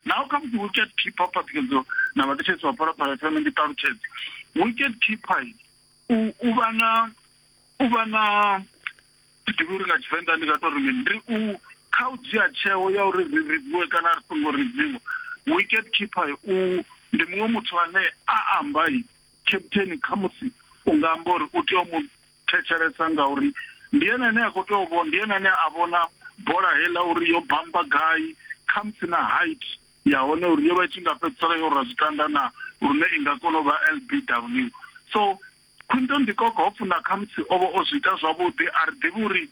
Now come to wicket keeper phaṱhukedzo na vhaṱetshedzi vha phalaphala fhano ndi ṱalutshedze wicket keeper u vha na u vha na ḓivhi uri nga tshivenḓa ndi nga to ri mini ndi u kha u dzhia tsheo ya uri ri ridziwe kana ri songo ridziwa wicket keeper u ndi muṅwe muthu ane a amba Kheptheni khamusi u nga amba uri u tea u mu thetshelesa ngauri ndi ene ane a khou tea u vhona, ndi ene ane a vhona bola heiḽa uri yo bamba gai, khamusi na height ya hone uri yo vha i tshi nga fhedzisela yo rwa zwitanda na lune i nga kona u vha LBW. So Quinton de Kock hopfi na khamusi o vha o zwi ita zwavhuḓi a ri ḓivhi uri.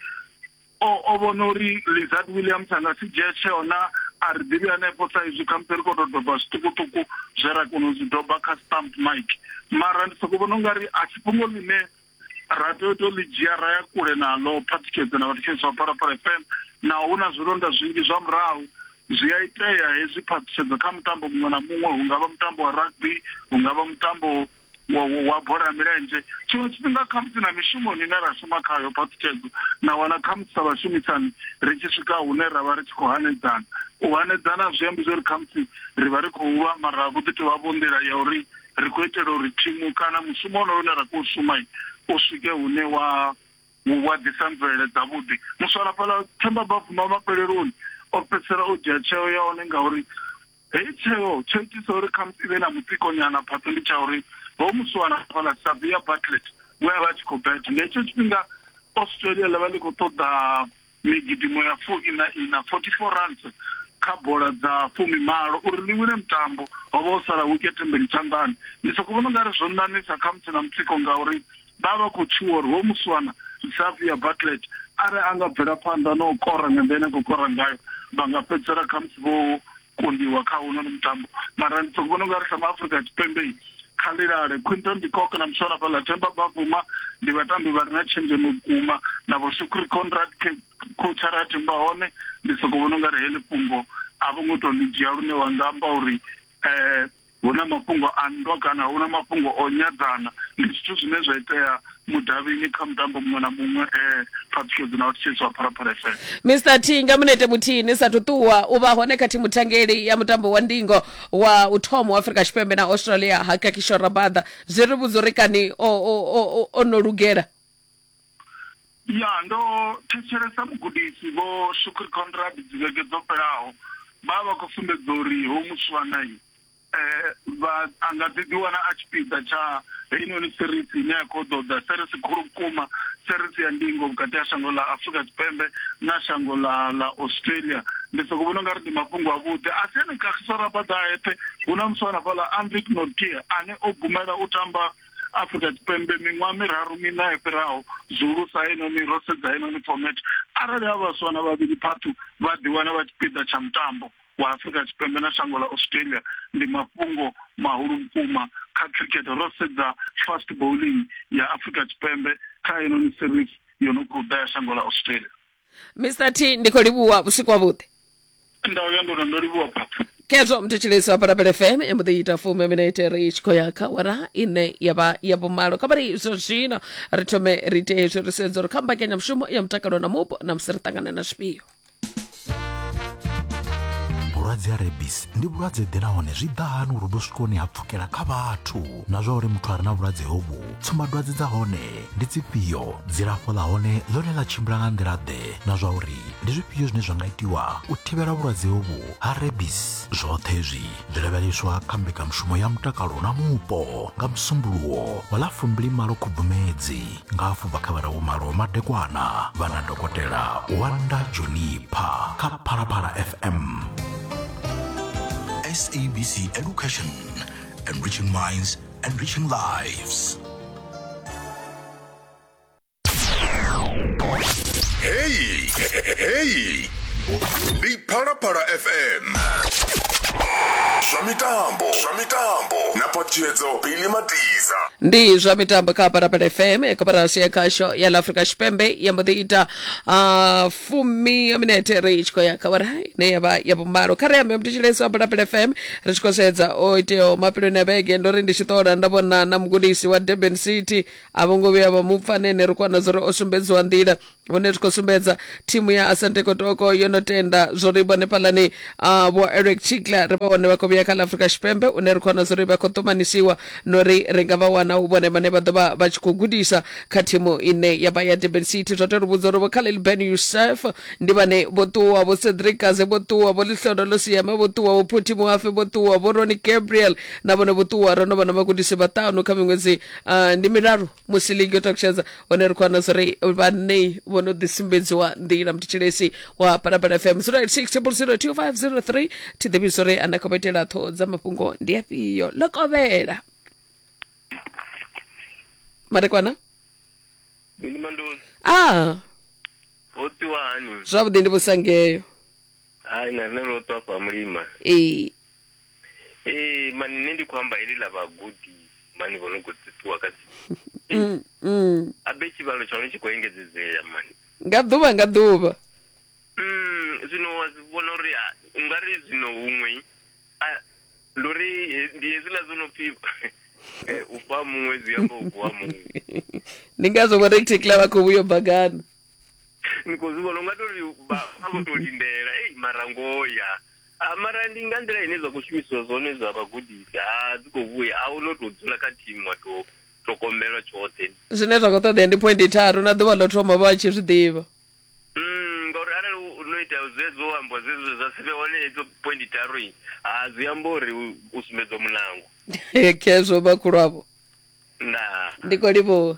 O, o vhona uri Lizard Williams a nga si dzhie tsheo na a ri ḓivhi hanefho sa izwi khamusi ri khou tou doba zwiṱukuṱuku zwe ra kona u zwi doba kha stamp mic mara ndi sokou vhona ungari a si fhungo ḽine ra tea u tou ḽi dzhia ra ya kule naḽo phathikhedzo na vhathetshelesi vha phalaphala fm naho hu na zwilonda zwinzhi zwa murahu zwi a itea hezwi phaṱhutshedzo kha mutambo muṅwe na muṅwe hu nga vha mutambo wa rugby hu nga vha mutambo wa, wa bola ya milenzhe tshiṅwe tshifhinga khamusi na mishumoni ine ra shuma khayo phaṱhutshedzo na wana khamusi sa vhashumisani ri tshi swika hune ra vha ri tshi khou hanedzana u hanedzana zwi ambi zwo ri khamusi ri vha ri khou lwa mara vho ḓi tou vha vho nḓila ya uri ri khou itela uri thimu kana mushumo onoyo une ra khou shuma u swike hune wa wa ḓisa mvelele dzavhuḓi muswalafhala themba bafuma mafheleloni o fhedzisela o dzhia tsheo ya hone ngauri Heyi tsheo tsho itisa uri khamusi i vhe na mutsiko nyana phatsa ndi tsha uri ho muswana fhala Savia Bartlett we a vha a tshi khou beta. Nga hetsho tshifhinga Australia ḽa vha ḽi khou ṱoḓa migidimo ya fu ina ina, 44 runs, kha bola dza fumi malo uri ḽi wine mutambo. Ho vha ho sala wikethe mbili tshanḓani. Ndi sokou vhona u nga ri zwo ṋaṋisa khamusi na mutsiko ngauri vha vha khou tshuwa uri hoyu muswana Xavier Bartlett arali a nga bvela phanḓa na u kora nga nḓila ine a khou kora ngayo vha nga fhedzisela khamusi vho kundiwa kha hounoni mutambo mara ndi soko vhona ungari sa maafurika tshipembe kha lilale quinton dicok na muswana fhaḽa themba bavuma ndi vhatambi vha re na tshenzhemo vhukuma na vho shukri conrad coach ara themba hone ndi soko vhona ungari heḽi fhungo a vho ngo tou ḽi dzhia lune wa nga amba uri um hu na mafhungo a nndwa kana hu na mafhungo o nyadzana ndi zwithu zwine zwa itea mudavhini kha mutambo muṅwe na muṅwe um phaṱhukedzi na u thetshelesi wa phalaphala fm mr t nga munete muthihi ni sathu ṱuwa u vha hone kha thimu thangeli ya mutambo wa ndingo wa u thoma wa afrika tshipembe na australia hakakisho rabada zwi ri vhudza uri kani o, o, o, o, o no lugela ya ndo thetshelesa mugudisi vho shukri conrad dzivhege dzo fhelaho vha vha khou sumbedza uri ho muswanai um vha a nga ḓi ḓiwana a tshipiḓa tsha heinoni serisi ine ya khou ḓoḓa serisi khulu vhukuma serisi ya ndingo vhukati ha shango ḽa afurika tshipembe na shango ḽa ḽa australia ndi soko vhona ungari ndi mafhungo avhuḓi a si ene kagiso rabada a eṱhe hu na muswa na fhaḽa anvik norkia ane o gumela u tamba Afrika Tshipembe miṅwaha miraru miṋa yo fhiraho zwihulusa heinoni ro sedza heinoni format arali ha vhaswa na vhavhili phathu vha ḓiwana vha tshipiḓa tsha mutambo wa Afrika Tshipembe na shango ḽa Australia ndi mafhungo mahulu vhukuma kha cricket ro sedza fast bowling ya Afrika Tshipembe kha heinoni series yo no khou ḓa ya shango ḽa Australia. mr t ndi khou livhuwa vhusiku havhuḓi nda uya ndono ndo livhuwa papa khezwo mthetshelesi wa parapele fm i mbo ḓi ita fumi minete ri tshi khou ya kha wara ine ya vha ya vhumalo kha vhari zwa zwino ri thome ri ite hezwi ri sedza uri kha mbekanyamushumo ya mutakalo na mupo na musi ri ṱangana na zwifhio vhulwadze ha rebis ndi vhulwadze ḓe nahone zwi ḓa hani uri vhu swikoni ha pfukela kha vhathu na zwa uri muthu a re na vhulwadze hovhu tsumbadwadze dza hone ndi dzifhio dzilafho ḽa hone ḽone ḽa tshimbila nga nḓila-ḓe na zwa uri ndi zwifhio zwine zwa nga itiwa u thivhela vhulwadze hovhu ha rebis zwoṱhe zwi zwi lavheleswa kha mbekanyamushumo ya mutakalo na mupo nga musumbuluwo wa ḽa fumbili malo khubvumedzi nga afho bva kha vhararu malo madekwana vha na dokotela wanda jonipha kha phalaphala fm sabc education Enriching minds, enriching lives. Hey, hey. Ndi Phalaphala FM. Zwa mitambo, zwa mitambo. Na potiedzo Billy Matiza. ndi zwa mitambo kha parapara fm koporasi ya khasho ya la afrika tshipembe ya mbo ḓi ita ah, fumi ya minete ri tshi khou ya kha wara ine ya vha ya vhumalo kha ri ambe mutshilesi wa bulapula fm ri tshi khou sedza o iteaho mafheloni a vhege ndo ri ndi tshi ṱola nda vhona na mugudisi wa durban city a vho ngo vhuya vha mu pfa nene ri kwana zwo ri o sumbedziwa nḓila hune ri khou sumbedza thimu ya asante kotoko yo no tenda zwo ri vhone fhalani ah, vho eric chikla ri vha hone vha khou vhuya kha ḽa afrika tshipembe une ri khou wana zwo ri vha khou ṱumanisiwa no ri ri nga vha wana hu vhone vhane vha ḓo vha vha tshi khou gudisa kha thimu ine ya vha ya durban city zwa tou ri vhudza uri vho khalil ben yusef ndi vhane vho ṱuwa vho cedric gaze vho ṱuwa vho ḽihlodo ḽo siema vho ṱuwa vho phuthi muhafe vho ṱuwa vho roni gabriel na vhone vho ṱuwa ro no vha na vhagudisi vhaṱanu kha miṅwedzi ah, ndi miraru musi ligi yo takutshedza hone ri khou wana zwo ri vhanei vho no ḓisumbedziwa nḓila mthetshelesi wa palapala fm 0860025003 thi ḓivhi zwo ri ana khou itela ṱhoho dza mafhungo ndi afhio ḽo kovhela madekwana Ndi mandoni. a Ho tiwa hani? zwavhuḓi ndi vhusangeyo Hai na nṋe ro to afha mulima. ee ee mani nṋe ndi khou amba heḽi ḽa vhagudi mani vho no khou ṱuṱuwa kha mm, mm. abe tshivhalo tsha hone tshi khou engedzedzea mani nga ḓuvha nga ḓuvha mm, zwino wa zwi vhona uri u nga ri zwino huṅwe ndi uri ndi hezwiḽa zwo no pfi eh, u fha muṅwe zwi amba u vuwa muṅwe ndi ngazwo vho reticla vha khou vhuyo bagana ni khou zwi vhona u nga tou ri vha vho tou lindela ei marangoya Ah, mara ndi nga nḓila ine zwa khou shumisiwa zwone zwa vhagudisi a dzi khou vhuya a u no tou dzula kha thimu wa tou ṱhogomelwa tshoṱhe zwine zwa khou ṱoḓea ndi point tharu na ḓuvha ḽo thoma vha tshi zwi ḓivha Mm, ngauri arali u no ita zwezwo amba zwezwo zwa si vhe hone hedzo point tharu i a zwi amba uri u- u sumbedzwa mulango khezwo vhakhulu avho ndaa ndi khou livhuwa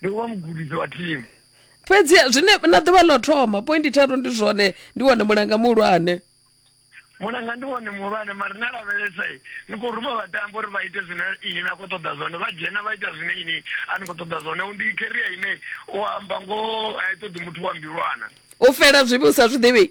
ndi u vha mugudisi wa thimu fhedzi zwine na ḓuvha ḽo thoma pointi tharu ndi zwone ndi wone mulanga muhulwane mulanga ndi wone muhulwane mari na lavhelesa ni khou ruma vhatambo uri vha ite zwine ini na khou ṱoḓa zwone vha dzhena vha ita zwine ini a ni khou ṱoḓa zwone ndi keria ine u amba ngoho a i ṱoḓi muthu wa mbilwana u fela zwivhi u sa zwi ḓivhi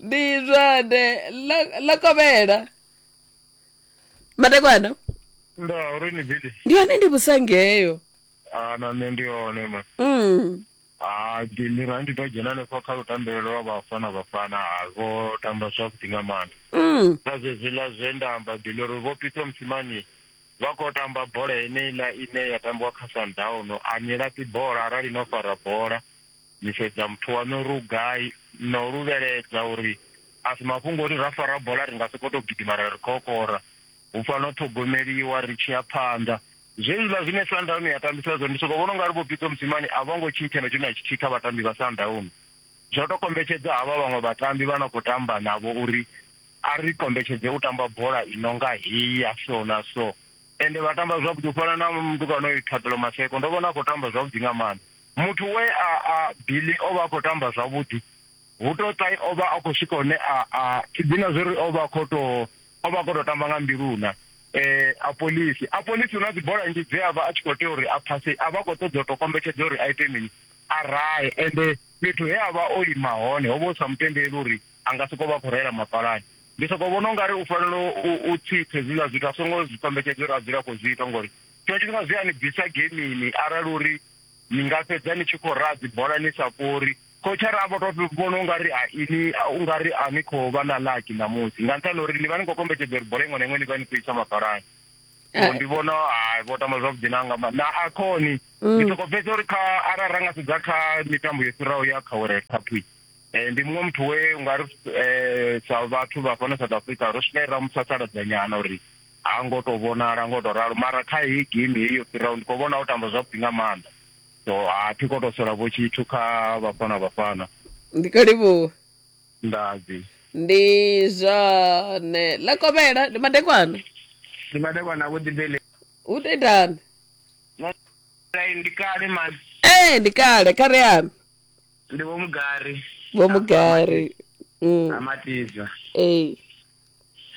ndi zwone ḽo ḽo kovhela madekwana nda uri ni bidi ndi hone ndi vhusangeyo a na nṋe ndi hone ma mm. a ndi ra ndi to dzhena hanefho kha lutambelo lwa vhafana vhafana ha vho tamba zwavhuḓi nga maanḓa Mm. na zvezwiḽa zwe nda amba bili uri vho pitso musimani vha khou tamba bola heneiḽa ine ya tambiwa kha sundown a ni laṱi bola arali no fara bola Ni sedza muthu waṋu ri u gai, no luvheledza uri a si mafhungo uri ra fara bola ri nga sokou tou gidima ra ri kokora. Hu fanela u ṱhogomeliwa ri tshi ya phanḓa. Zwenezwiḽa zwine Sundowns ya tambisa zwone ndi sokou vhona u nga ri Vho Pitso Mosimane a vho ngo tshintsha na tshithu na tshithihi kha vhatambi vha Sundowns. Zwo tou kombetshedza havha vhaṅwe vhatambi vha no khou tamba navho uri a ri kombetshedze u tamba bola i no nga heyi ya so na so. Ende vha tamba zwavhuḓi u fana na mutukana oyu Thabelo Maseko ndo vhona a khou tamba zwavhuḓi nga maanḓa. Muthu we a a Billy o vha a khou tamba zwavhuḓi. Vutoṱai o vha a khou swika hune a a tshi dina zwo ri o vha a khou tou o vha a khou tou tamba nga mbiluna. Eh, Apolisi. Apolisi hu na dzibola nnzhi dze a vha a tshi khou tea uri a phase, a vha a khou ṱoḓa u tou kombetshedza uri a ite mini? A rahe. Ende fhethu he a vha o ima hone ho vha hu sa mu tendeli uri a nga sokou vha a khou rahela mapalani. Ndi sokou vhona u nga ri u fanela u u tsitsa hezwiḽa zwithu a songo zwi kombetshedza uri a dzule a khou zwi ita ngori tshiṅwe tshifhinga zwi a ni bvisa gemini arali uri ni nga fhedza ni tshi khou raha dzibola ni sa fhuri khotshara a vho to vhona ungari a ini ungari a ni khou vha na laki ṋamusi nga nṱhani uri ni vha ni khou kombetshedza uri bola iṅwe na iṅwe ni vha ni khou isa mafhalani so ndi vhona hai vho tamba zwavhuḓi na nga na akhoni mm. ndi soko fhedza uri kha arali ra nga sedza kha mitambo yo fhiraho ya kha world cup eh, ndi muṅwe muthu we ungari eh, sa vhathu vha fhano south africa ro swika ra musasaladza nyana uri Ha ngo to vhonala ngo to ralo mara kha heyi game heyi yo fhiraho ndi kho vhona o tamba zwavhuḓi nga maanḓa so a thi kho to sola vho tshithu kha vhafana vhafana ndi kho livhuwa ndadzi ndi zwone ḽa kovhela ndi madekwana ndi madekwa na vhuḓibele hu to itani Lai, ndi kale ma ee ndi kale kha ri ambe ndi vho mugari vho mugari Mm, amatiza ee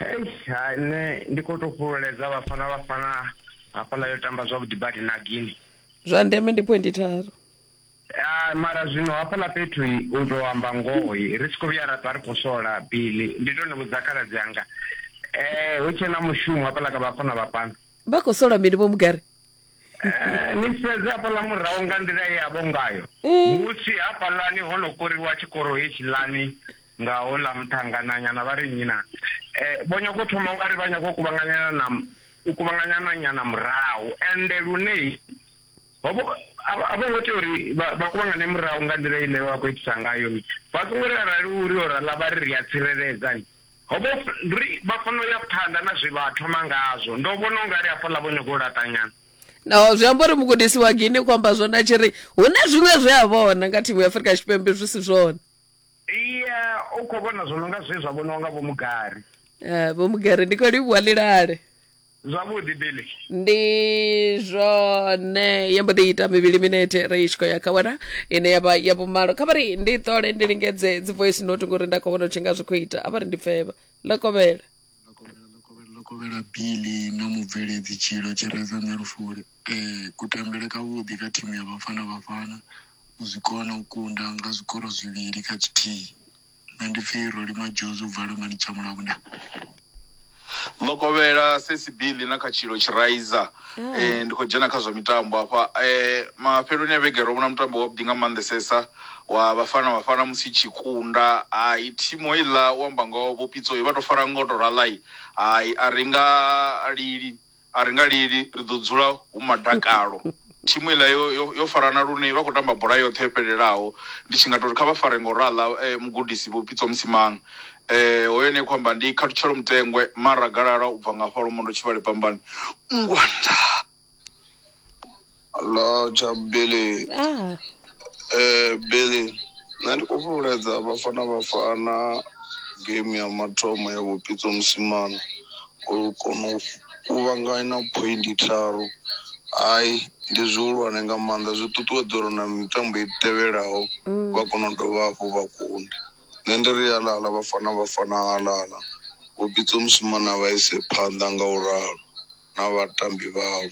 Eish ha nṋe ndi khou tou fhululedza vhafana vhafana hafhaḽa yo tamba zwavhuḓi badi na gini zwa ndeme ndi phoindi tharu Ah, mara zwino hafhaḽa fhethu u tou amba ngoho ri si khou vhuya ra ṱwa ri khou sola bili ndi tou ni vhudza khaladzi anga um hu tshena mushumo hafhaḽa kha vhafana vhafana vha khou sola mini vho mugari Eh, ni sedze hafhaḽa murahu nga nḓila ye yavho ngayo eh. musi hafhaḽani ho no koriwa tshikoro hetshiḽani nga houḽa muṱhangananyana vha ri nnyi na eh, vho nyago u thoma nga ri vha nyago u kuvhanganyana na u kuvhanganyana nyana murahu ende lune a vho ngo tea uri vha kuvhangane murahu nga nḓila ine vha khou itisa ngayo vha songo ri arali uri o rala vha ri ri a tsireledzani Ho vha hu ri vha fanela u ya phanḓa na zwe vha thoma ngazwo. Ndo vhona u nga ri hafhaḽa vho nyaga u laṱanyana. Naho zwi amba uri mugudisi wa Guinea u amba zwone a tshi ri hu na zwiṅwe zwe a vhona nga thimu ya Afrika Tshipembe zwi si zwone. Iya, u khou vhona zwo no nga zwe zwa vhoniwa nga Vho Mugari. Eh, Vho Mugari, ndi khou livhuwa ḽi lale. zwavhuḓi billy ndi zwone yo mbo ḓi ita mivhili minete ri tshi khou ya kha wena ine ya vha ya vhumalo kha vha ri ndi ṱole ndi lingedze dzi voice note ngori nda khou vhona u tshi nga zwi khou ita a vha ri ndi pfevha ḽo kovhela lokovhela bili na mubveledzi tshilo tshireza nṋe lufuli um kutambele kavhuḓi kha thimu ya vhafana vhafana u zwi kona u kunda nga zwikoro zwivhili kha tshithihi Nṋe ndi pfi Roli Madjozi u bva Lungani Tshamula hune. Ḽokovhela sesi Billy na kha tshilo tshiraiza ndi khou dzhena kha zwa mitambo hafha mafheloni a vhege ro vhona mutambo wa vhuḓi nga maanḓesesa wa vhafana vhafana musi i tshi kunda hai thimu heiḽa u amba ngoho vho Pitso vha to fara ngoto raḽa hai a ri nga lili. A ri nga lili, ri ḓo dzula hu madakalo. Thimu iḽa yo, yo, yo farana lune vha khou tamba bola yoṱhe yo fhelelaho. Ndi tshi nga tou ri kha vha fare nga u raḽa eh, mugudisi Vho Pitso Msimang. Eh, hoyo ene khou amba ndi Khathutshelo Mutengwe, Mara Galala u bva nga hafha Lwomondo Tshivhale Pambani. Ngwanda. Hello cha Billy. Ah, Eh Billy, nṋe ndi khou fhululedza vhafana vhafana game ya mathomo ya vhupitso musimana u kona u kuvhanganya point tharu hai ndi zwihulwane nga maanḓa zwi ṱuṱuwedza uri na mitambo i tevhelaho vha kona u dovha hafhu vha kunde nṋe ndi ri halala vhafana vhafana halala vhupitso musimana vha ise phanḓa nga u ralo na vhatambi vhawo.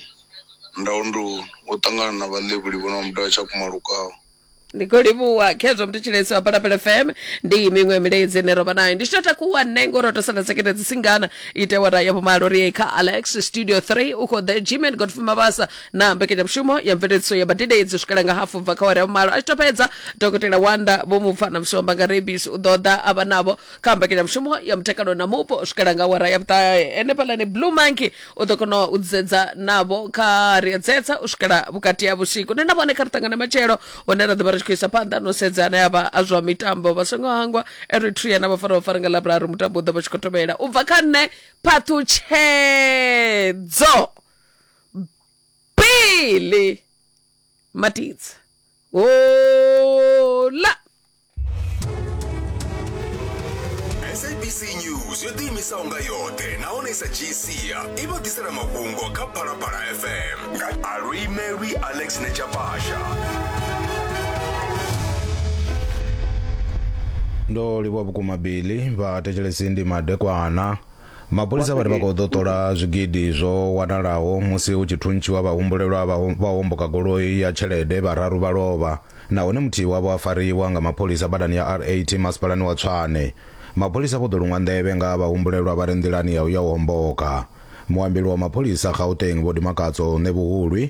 Ndau ndi u ṱangana na vhaḽevhuli vho no mudavha tsha kumalukaho. ndi khou livhuwa khezwo mthetshelesi wa balapele fm ndi miṅwe milaedzi ine ro vha nayo ndi tshi tou takuwa nṋe ngori ro tou sala sekete dzi singana ite wara ya vhumalo ri ye kha alex studio 3 u khou ḓe gmen godfrey mabasa na mbekanyamushumo ya mveledziso ya badidedzi u swikela nga hafu bva kha wara ya vhumalo a tshi tou fhedza dokotela wanda vho mupfa na mshomba nga rebisi u ḓo ḓa a vha navho kha mbekanyamushumo ya mutakalo na mupo u swikela nga awara ya vhuṱahe ene phalani blue monkey u ḓo kona u dzedza navho kha ri a dzedza u swikela vhukati ha vhusiku nṋe na vhone kha ri ṱangane matshelo hune ra ḓo vha ri tshi khou isa phanḓa no sedza ane avha a zwa mitambo vha songo hangwa eritrea na vhafara vhafara nga ḽavhuraru mutambo u ḓo vha tshi khou tovhela u bva kha nṋe phaṱhutshedzo pili matidza hola sabc news yo ḓiimisaho nga yoṱhe nahone sa gc i vha ḓisela mafhungo kha phalaphala fm nga aluimelwi alex nechapasha ndo livhuwa vhukuma bili vhathetshelesi ndi madekwana Mapholisa vha ri vha khou ḓo ṱola zwigidi zwo wanalaho musi hu tshi thuntshiwa vhahumbulelwa vha homboka goloi ya tshelede, vhararu vha lovha nahone muthihi wavho a fariwa nga mapholisa badani ya R80 masipalani wa Tshwane. Mapholisa vho ḓo luṅwa nḓevhe nga ha vhahumbulelwa vha re nḓilani ya u ya u homboka. Muambeli wa mapholisa Gauteng Vho Dimakatso Ṋebuhulwi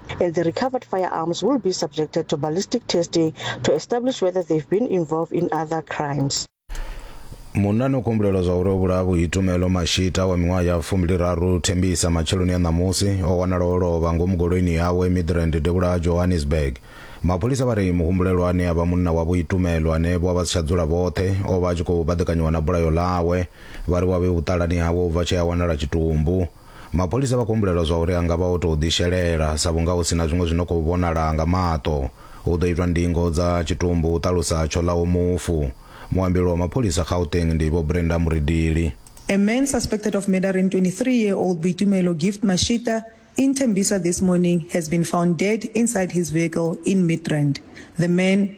and the recovered firearms will be subjected to ballistic testing to establish whether they've been involved in other crimes. munna no kumbulelwa zwa uri o vhulaha vhuitumelo mashita wa miṅwaha ya fumbiliraru thembisa matsheloni a ṋamusi o wanala o lovha ngomu goloini yawe midrand devhula ha johannesburg mapholisa vha ri muhumbulelwa ane a vha munna wa vhuitumelo ane vho vha si tsha dzula vhoṱhe o vha a tshi khou baḓekanyiwa na bulayo ḽawe vha ri wa vhe vhuṱalani hawe u bva tshea wanala tshitumbu Mapholisa vha khou humbulelwa zwa uri a nga vha o tou ḓishelela sa vhunga hu si na zwiṅwe zwi no khou vhonala nga maṱo. Hu ḓo itwa ndingo dza tshitumbu, hu ṱalusa Tsholaho mufu. Muambeli wa mapholisa Gauteng ndi Vho Brenda Muridili. A man suspected of murdering 23 year old Boitumelo Gift Mashita in Tembisa this morning has been found dead inside his vehicle in Midrand. The man,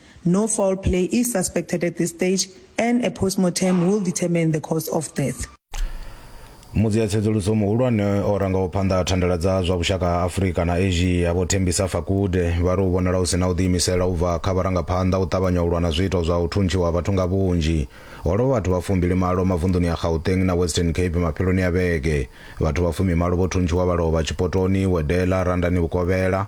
No foul play is suspected at this stage and a postmortem will determine the cause of death. mudzi a tsedzuluso muhulwane o rangaho phanḓa ha thandela dza zwa vhushaka ha afurika na asia vho thembisa fakude vha ri u vhonala hu si na u ḓiimisela u bva kha vharangaphanḓa u ṱavhanya u lwa na zwiito zwa u thuntshiwa ha vhathu nga vhunzhi ho lovha vhathu vha fumbili malo mavunḓuni ya gauteng na western cape mafheloni a vhege vhathu vha fumimalo vho thuntshiwa vha lovha tshipotoni wedela randani vhukovhela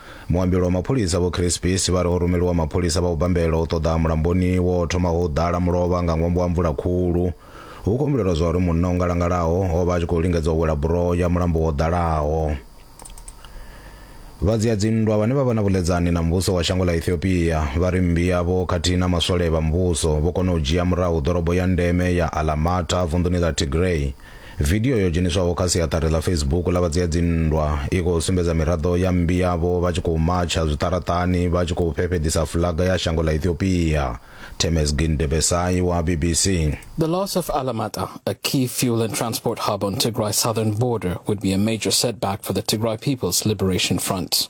Muambeli wa mapholisa Vho Chris Peace vha ri ho rumeliwa mapholisa vha u bambela u ṱoḓa mulamboni wo thomaho u ḓala mulovha nga ṅwambo wa mvula khulu. Hu khou humbulelwa zwa uri munna o ngalangalaho o vha a tshi khou lingedza u wela buroho ya mulambo wo ḓalaho. Vha dzia dzinndwa vhane vha vha na vhuḽedzani na muvhuso wa shango ḽa Ethiopia vha ri mmbi yavho khathihi na maswole vha muvhuso vho kona u dzhia murahu ḓorobo ya ndeme ya Alamata vunḓuni ḽa Tigray. Vidio yo dzheniswaho kha siaṱari ḽa Facebook ḽa vha dzia dzinndwa i khou sumbedza miraḓo ya mmbi yavho vha tshi khou matsha zwiṱaraṱani vha tshi khou fhefheḓisa fulaga ya shango ḽa Ethiopia. Temesgin Debesay wa BBC. The loss of Alamata, a key fuel and transport hub on Tigray's southern border, would be a major setback for the Tigray People's Liberation Front.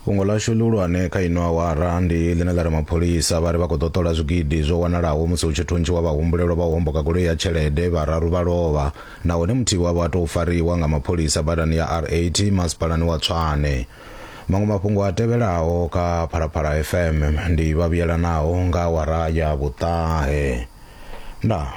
Fhungo ḽashu ḽihulwane kha ino awara ndi ḽine ḽa ri mapholisa vha ri vha khou ḓo ṱola zwigidi zwo wanalaho musi hu tshi thuntshiwa vhahumbulelwa vha u homboka goloi ya tshelede, vhararu vha lovha nahone muthihi wavho a tou fariwa nga mapholisa badani ya R80 masipalani wa Tshwane. Maṅwe mafhungo a tevhelaho kha Phalaphala FM ndi Vhavhuyelanaho nga awara ya vhuṱahe. Ndaa.